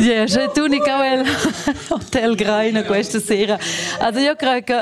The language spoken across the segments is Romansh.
Yeah, j'ai tout Nicole Hotel Greiner questa sera. Also io credo che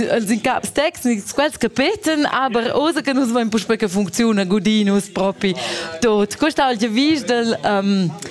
als in caps tecnics quels che peten, aber osa che nus vain puspè che funziona Godinus propi tot. Questa oggi vis del um,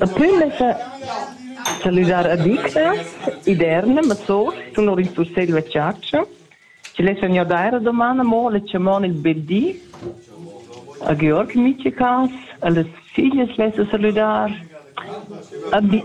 Daplü lessa salüdar addictas, Iderna, Mazos, tenor il cussegl da chatscha, chi lessan gnir d'eir a doman amo la chamon il bel di. A Georg in miche cas, a las figlias lessa salüdar, a bi-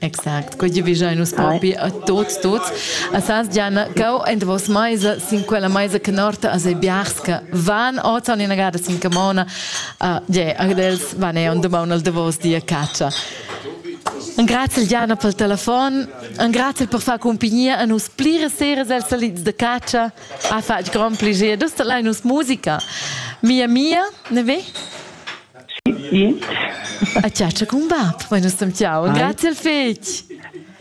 Exact, quei giuvisai nus propi a tots, tots. A sas Gianna, cau en vos maisa, sin quella maisa che norta a se biarska, van ozan ina gada sin camona, uh, je, agdels van e on domani al davos dia caccia. Un grazie Gianna pel telefon, un grazie per far compagnia a nus plire sere sel salids de caccia, a fatg grand plaisir, dus te lei nus musica. Mia mia, ne ve? A chatscha cun bab, mai nus sem jau. Grazie al fegl.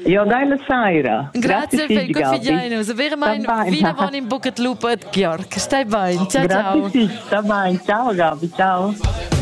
Jo, geile Saira. Grazie al fegl, gut fidiainus. Vera mai vina von in bucet lupet, Georg. Stai bain. Ciao, ciao. Grazie, sta bain. Ciao, Gabi, ciao.